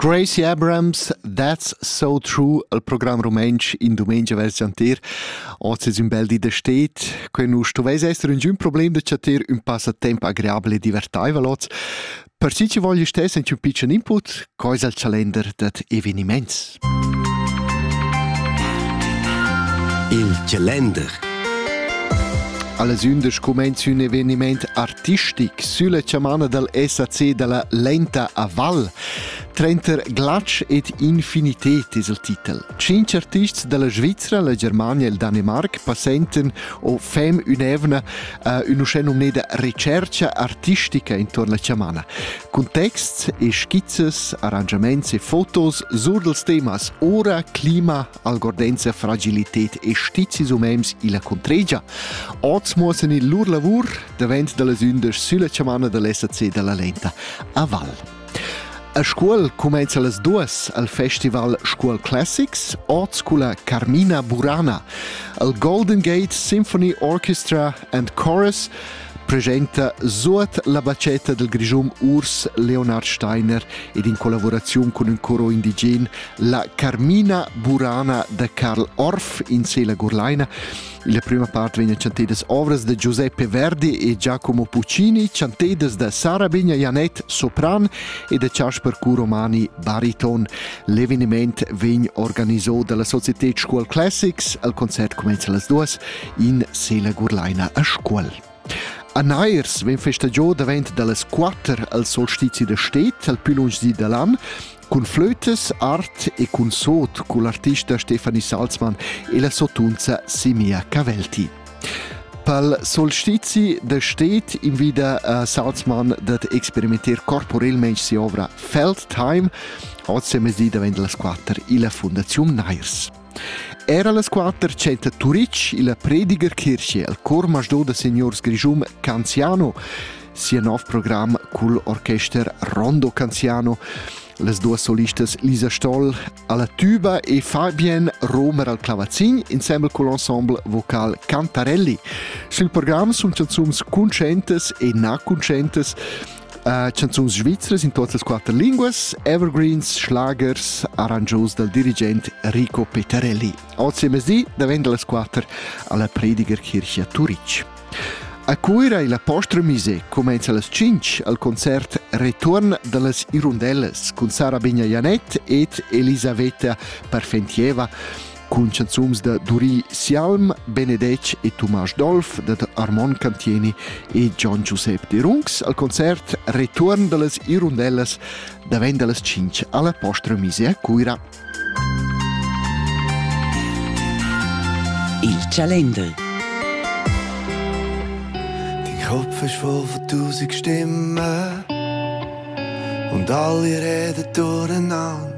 Gracie Abrams, That's So True, al program rumantsch in dumengia vers chantir. Oz es ün bel di da stet, que nu stovais esser ün problem da chatter ün passatemp agreabile e divertaivel oz. Per chi chi vogl stess ün pitschen input, cois al chalender dad evenimaints. Il calender Alles ündisch cumainz ün evenimaint artistic sülla chamana dal SAC da la Lenta a Val. Trenter glatsch ed infinitet es il titel. Cinc artists da la Svizzera, la Germania e il Danemarc passenten o fem ün'evna uh, ün'uschè nomneda recercha artistica intuorn la chamana. Contexts e skizzas, arrangiaments e fotos sur dals temas ora, clima, algordenza, fragilitet e stizis umens illa contregia oz muossan il lur lavur davent da las ündas sülla chamana da l'SAC da la Lenta a Val. A Scuol cumenza las duas al festival Scuol Classics, oz culla Carmina Burana, al Golden Gate Symphony Orchestra and Chorus presenta suot la bacetta del Grischun Urs Leonard Steiner ed in collaboraziun cun ün coro indigen la Carmina Burana da Karl Orff in Sela Gurlaina. La prima parte vegna chantedas ovras da Giuseppe Verdi e Giacomo Puccini, chantedas da Sara Bigna Janet Sopran e da Chasper Curomani Bariton. L'eveniment vegn organizzo dalla Società Scuol Classics, al concert comenza las duas in sela gurlaina a Scuol. A Nairs vegn festa giò davent da las quatter al solstizi da stet al più lunsch di da l'an cun flötes, art e cun sot cun l'artista Stefanie Salzmann e la sotunza Simia Cavelti. Pal solstizi da stet invida a Salzmann dad experimentar corporelmente sia ovra Feld Time, oz è mezdi davent las quatter illa Fondaziun Nairs. Era las quatter tschenta Turitg illa Predigerkirche al cor masdò da signurs Grischun Canziano sia nov program cul orchester Rondo Canziano. Las duas solistas Lisa Stoll alla tuba e Fabien Romer al clavazin insieme col ensemble vocal Cantarelli. Sul program sun chanzuns cuntscientas e na cuntscientas Uh, canzuns svizras in tuot las quatter linguas, evergreens, schlagers, arrangios dal dirigent Rico Petarelli. Oggi mezdi daventa las quatter alla Predigerkirche a Turic. A Cuira e la Postremise comenza las 5 al concert Return dallas Irundellas con Sara Bigna Janet ed Elisaveta Parfentieva cun chanzuns da Duri Sialm, Benedetg e Tomasz Dolf dad Armon Cantieni e Gian Giuseppe Derungs al concert Return dallas Irundellas davent dallas 5 alla Postra Mise a Cuira. Il Calender Kopf ist voll von tausend Stimmen und alle reden durcheinander.